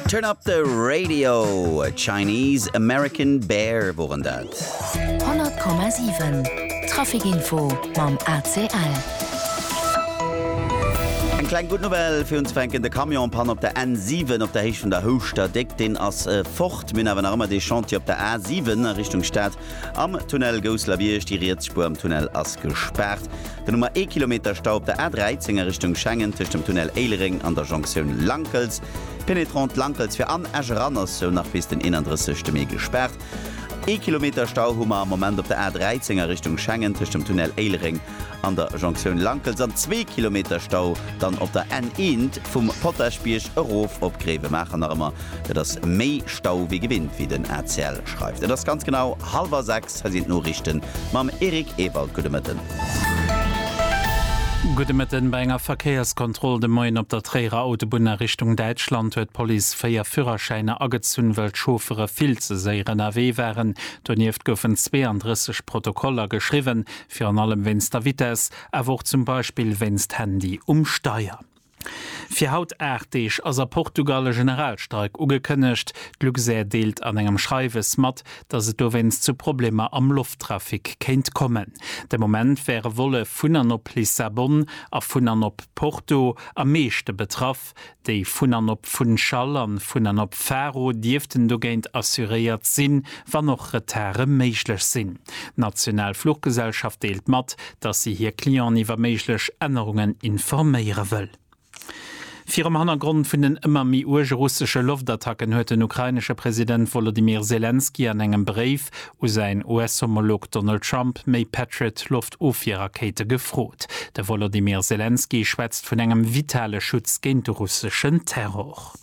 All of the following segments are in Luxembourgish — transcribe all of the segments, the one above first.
Turn up the radio, Chinese American Bear woren dat. 100,7 Trafikinfo mam ACL. Eng kleng gutt Nouvelle fir unzefänken, de Camion Panne op der N7 op der Héicht vun der Houschter Déck, deen ass fort. Mir hunn awer nach ëmmer dee Chantier op der A7 a Richtung Stad, Am Tunnel Gousselerbierg, déi riets Spuer am Tunnel ass gespaart. Den Nummer ee Kilometer Stau op der A13 a Richtung Schengen tëscht dem Tunnel Éilereng an der Jonktioun Lankels. D'Penetrante Lankels fir an Esch eran ass sou nach bis den 31 Mee gespaart. Ee Kilometer Stau hu mer am Moment op der A13 a Richtung Schengen tëscht dem Tunnel Éilereng an der Jonktioun Lankels an zwee Kilometer Stau dann op der N eent vum Potaschbierg erof op Gréiwemaacher. Nach ëmmer gëtt ass méi Stau wéi gewinnt, wéi den ACL schreift. Et ass ganz genau hallwer 6, hei sinn d'Noriichten mam Eric Ewald. Gudde Mëtten. Gudde Mëtten. Bei enger Verkéierskontroll de Moien op der Tréierer Autobunn a Richtung Däitschland huet d'Police véier Führerschäiner agezunn, well d'Chauffere vill ze séier ënnerwee waren. Donieft goufen 32 Protokoller geschriwwen, Virun allem wéinst der Vitess, awer och zum Beispill wéinst Handy um Steier. Fir haut 8 Deeg ass a Portugal e Generalstreik ugekënnegt. D'Luxair deelt an engem Schreiwes mat, datt et dowéinst zu Problemer am Lofttrafic kéint kommen. De Moment wäre Volle vun an op Lissabon a vun an op Porto am meeschte betraff. Déi vun an op Funchal an vun an op Faro dierften dogéint assuréiert sinn, wann och Retarde méiglech sinn. D'national Fluchgesellschaft deelt mat, dass si hir Clienten iwwer méiglech Ännerungen informéiere wëll. Virum Hannergrond vun den ëmmer méi uerge russesche Loftattacken huet den ukrainesche President Wolodymyr Selenskyj an engem Bréif u säin US-Homolog Donald Trump méi Patriot-Loftofwierrakéite gefrot. De Wolodymyr Selenskyj schwätzt vun engem vitale Schutz géint de russeschen Terror.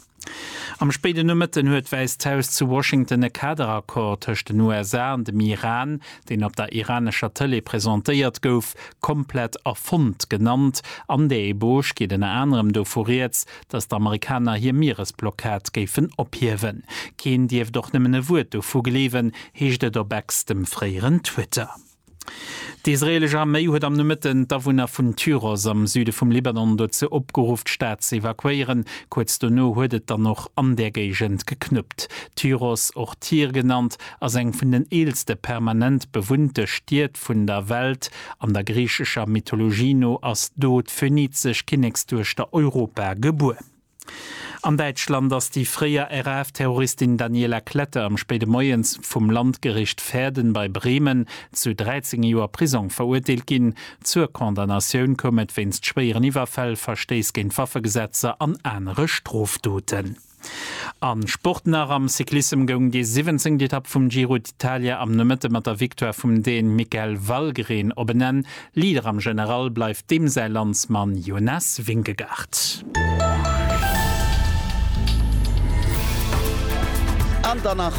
Am spéiden Nomëtten huet d'Wäisst Haus zu Washington e Kaderaccord tëscht den USA an dem Iran, deen op der iranescher Tëlee presentéiert gouf, komplett erfonnt genannt. An der Eboauge geet ënner anerem dovu rieds, datt d'Amerikaner hir Mieresblockad géifen ophiewen. Keen dierft och nëmmen e Wuert dovu gleewen, heescht et op Ex, dem fréieren Twitter. D'israeelesch Arméi huet am Nomëtten d'Awunner vun Tyros am Süde vum Libanon dozou opgeruff, d'Stad ze evakuéieren. Kuerz dono huet et dann och an där Géigend geknuppt. Tyros, och Tyr genannt, ass eng vun den eelste permanent bewunnte Stied vun der Welt. An der griichescher Mythologie no ass do d'phönizesch Kinneksduechter Europa gebuer. An Däitschland ass déi fréier RAF-Terroristin Daniela Klette am spéide Moies vum Landgericht Verden bei Bremen zu 13 Joer Prisong verurteelt ginn. Zur Condamnatioun koum et wéinst schwéieren Iwwerfäll, Verstéiss géint d'Waffegesetzer an anere Strofdoten. A Sport nach, Am Cyclissem goung déi siwwenzéngt Etapp vum Giro d'Italia am Nomëtte mat der Victoire vum Dän Mikael Valgren op en Enn. Leader am General bleift deem säi Landsmann Jonas Vingegaard. An dann nach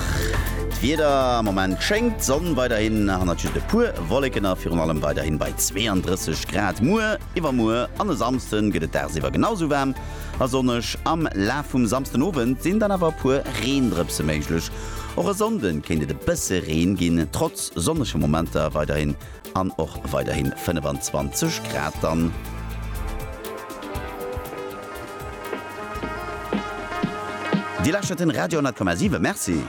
d'Wieder, Am Moment schéngt d'Sonn weiderhin, hannert just e puer Wolleken, a virun allem weiderhin bei 32 Grad. Muer. Iwwermuer an e Samsden gëtt et dagsiwwer genau sou waarm a sonneg. Am Laf vum Samsden Owend sinn dann awer e puer Reendrëpse méiglech. Och e Sonnde kéint et e bësse Reen ginn, trotz sonnege Momenter weiderhin an och weiderhin 25 Grad dann. Dir lauschtert den Radio 10,7. Merci.